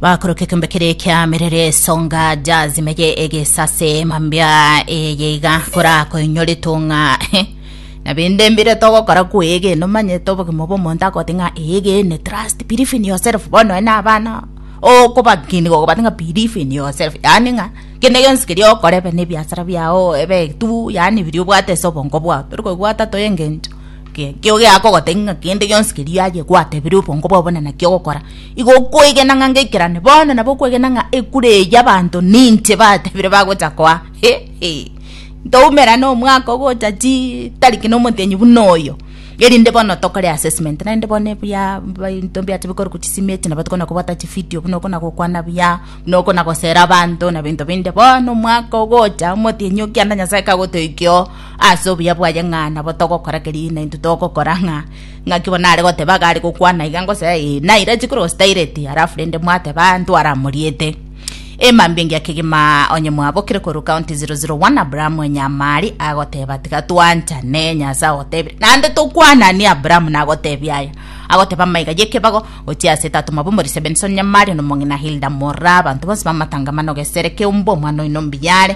bakoroka ekombe kere kia merere songa jazimege egesase mambia eyeiga kora koinyori tunga na binde mbire togokora kwege no manye to bogima bo monto akote nga ege ne trust believe in yourself bono ene abana o ko bakini go batinga believe in yourself yani nga kende gensi kiri okore be ne biasara biao ebe tu yani biri obwate so bongo bwa tori ko bwata to engencho Ke- kio geakogotebia ng'a kende gionsi keria aye gwatebire obongo bwabo na naki ogokora, igo okoegena ng'a ngeikerane. Bono nabo okoegena ng'a ekura eye y'abanto ninche batebire bagocha koa. Hehe. Ntoumerane omwaka ogocha chii tariki na omotienyi buna oyo, erinde bono tokore assessment. Naende bono ebuya mba ebinto mbiacha bikorokwa chisimi echi nabo tokona kobwata chividio buna okona gokwana buya, buna okona gosera abanto na ebinto binde. Bono omwaka ogocha omotienyi okianda Nyasae kagotoikia oo, Ase obuya bwaye ng'a nabo togokora keria na intwe togokora ng'a ng'aki bono are goteba iga are gokwana iga ngose ee naira chikoro staireti alafu rende mwateba ntware amoriete Ema mbingia kegima onye mwabokire koru county 001 Abraham enyamari agoteba tiga twanchane nyasa agotebire nande tokwanani Abraham nagotebia aya agoteba maiga yekebago gochia ase tatu mabomori Sebenson nyamari nomong'ina Hilda mora abanto bonsi bamatangamano gesere keumba omwana oino mbiyare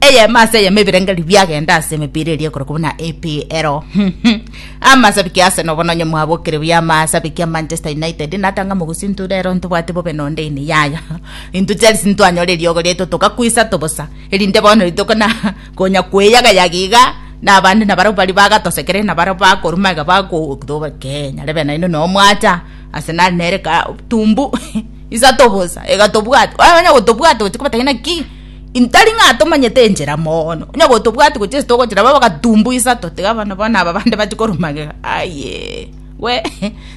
Eyemo ase eyemo ebirengererio biagenda ase emepira eria ekoro kobua na EPL. Amasabiki Arsenal obo nonye mwabokire buya amasabiki a Manchester United natanga mogosinto rero ntobwate bobe nonde ine yaya. Intwe Chelsea ntwanyora eriogo riaito togakwa isato bosa erinde bono rituko na konya kweyagayaga iga na abande nabarabwo baria bagatosekerire nabarabwo bakoruma iga bagotobekee nyare be naino noo mwacha Arsenal nere ka tumbu isato bosa iga tobwate onya gotobwate gochia kobatebia naki intari ng'a tomanyete enchera mono onye gotobwati gochia ase togochera baba gatumbu isato tiga bono bono aba bande bachia korwa magega aye we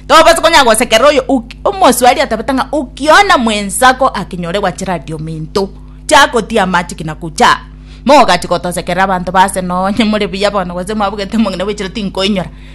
tobabasa konya gosekerera oyo oki omosubari atabete ng'a okiona mwensako akinyore gwachera aria ominto chiagotia amache ki nagocha mogachi gotosekerera abanto ba ase nonye more buya bono gose mwabugete omong'ina bwechire tinkoinyora.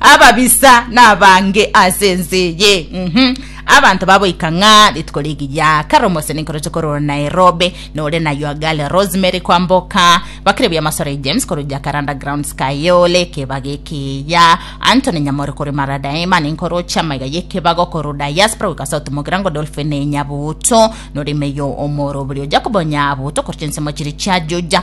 Ababisa nabange ase ense eye, mm, abanto baboika ng'a rituko rigiya kare omosani nkoroche korwa Nairobi nore na your girl Rosemary kwamboka bakire bia Masore James korwa Jacaranda Grounds Kayole ekebago ekiya Anthony Nyamori korwa Maradaima ninkoroche amaiga y'ekebago korwa Diaspora goika South Mogirango Dolphin Nyabuto nore Meyo Omoro Oborio Jacobo Nyabuto korwa chinsemo chiri chia Juja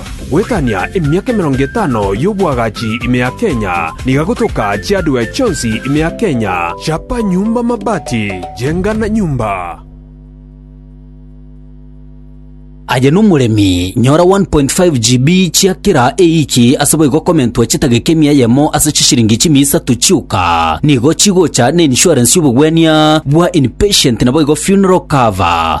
Goetania emiaka emerongo etano y'obwagachi ime ya Kenya, niga gotoka chi'hardware chionsi ime ya Kenya, chapa nyumba mabati, jenga na nyumba. Aye nomoremi, nyora 1.5 GB chia kera ewiki ase boigo komentwa chitageka emia eyemo ase chishiringi chimia isato chioka. Nigo chigocha na insurance y'obogwenia bwa inpatient naboigo funeral cover.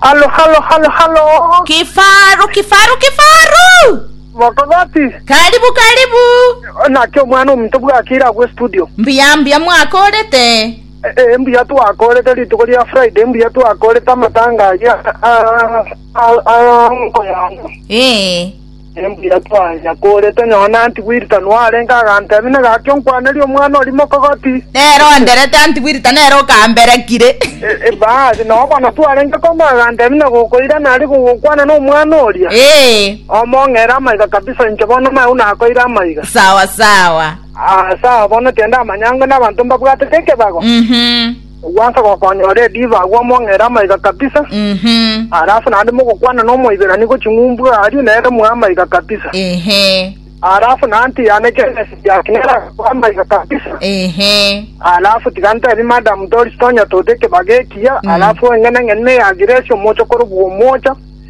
Halo, halo, halo, halo! Kifaru, kifaru, kifaru! Mokogoti! Karibu, karibu! Naki omwana omonto bwakire agwo estudio. Mbuya, mbuya mwakorete. E- e, mbuya twakorete rituko ria Friday, mbuya twakorete amatanga aria a- a- a- a nko yane. Ee. Nembuya twanya kore tonyore nantibwirita noarenge agantebi ne gaki onkwanerie omwana oria mokogoti. Nere onderete antibwirita nere okamberekire. Basi nao bono twarenge koma agantebi ne gokoira nari gogokwana nomwana oria. Omong'ere amaiga kabisa inche bono nao nakoire amaiga. Sawa sawa. Ase aa bono tiende amanyangwe nabanto mbabwatete ekebago. Ogwansa gokonyora ediva agwo omong'ere amaiga kabisa, Mhm. are ase naende mogokwana nomoiberani gochia ng'umbu aria nere mwe amaiga kabisa, Ehe. are ase naende tiyane Genesis yake nere agakwa amaiga kabisa, Ehe. alafu tiga ntebi madam tori tonya tote ekebaga ekiya Mm. alafu eng'eneng'ene ya giresi omochokoro bwa omocha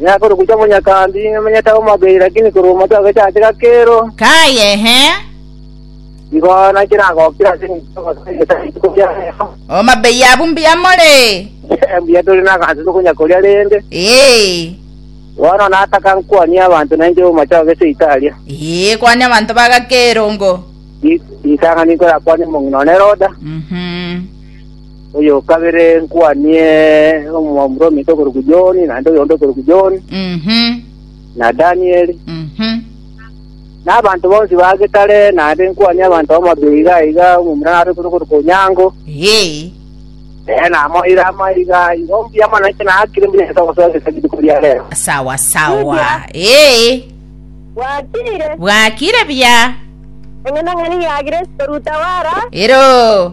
Miaka orogochia monyakandi nimenyete amo mabei, lakini korwa omochie ogecha ase gakero, Kaye, he. igo naki nagokire ase engencho y'ogosoa egesa rituko ria rero. O mabei abwo mbuya more. Mbuya tore naganse tokonya koria rende. Ee. Bono nataka nkwanie abanto nainche omochie ogecha Italia. Ee, kwania abanto ba gakero ngo. Ri- Ritang'ani nkorakwanie omong'ina one Roda. Mhm. Oyo o kabere nkuani omoromito okorokwa John, naende oyonde okorokwa John, Mhm. na Daniel, Mhm. na abanto bonsi ba getare, naende nkuani abanto bamabia iga iga, omomura nare kore okorokwa Onyango, Yee. ee, namoire amaiga igo mbuya mono inche nakire mbuya inche togosoa gese rituko ria rero. Sawa sawa. Ee. Bwakire, Bwakire buya. eng'enang'ani yagire sitorutawara. Ero.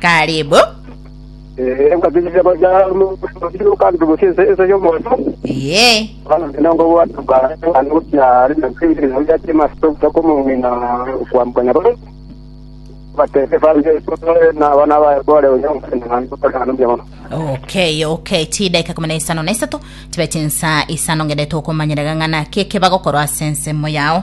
Karibu. Ye. Okay, okay. Ti dakika kumi na isano na isato tibe chinsa isano ngende tokomanyerega ng'ana keke bagokorwa ase ensemo yao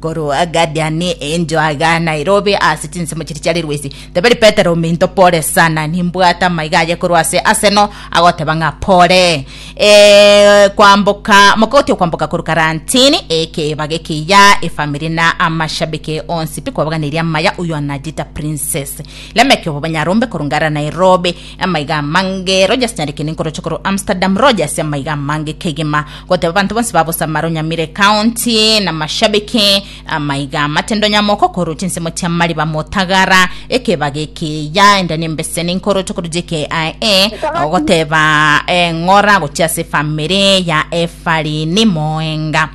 Korwa Gadiani encho aga Nairobi ase chinsemo chiria chiare rwesi teberi Petero ominto pole sana nimbwate amaiga aye korwa ase Arsenal agoteba ng'a pole eh, kwamboka mogoti okwamboka korwa karantini ekebaga ekiya efamiri na amashabiki onsi pi kwabaganirie amaya uyo anajita princess lemeki obobanyarombe korwa ngara Nairobi Amaiga amange Rogers nyarekende nkoroche korwa Amsterdam Rogers amaiga amange kegima goteba banto bonsi ba Bosamaro Nyamire County na mashabiki amaiga amatendo nyamoko korwa chinsemo chia mariba motagara ekebage ekiya enda nembeseni nkoroche korwa JKIA ogoteba eh, ng'ora gochia ase efamiri ya Efarini Moenga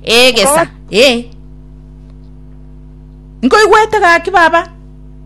egesa eh nkoigwete gaki baba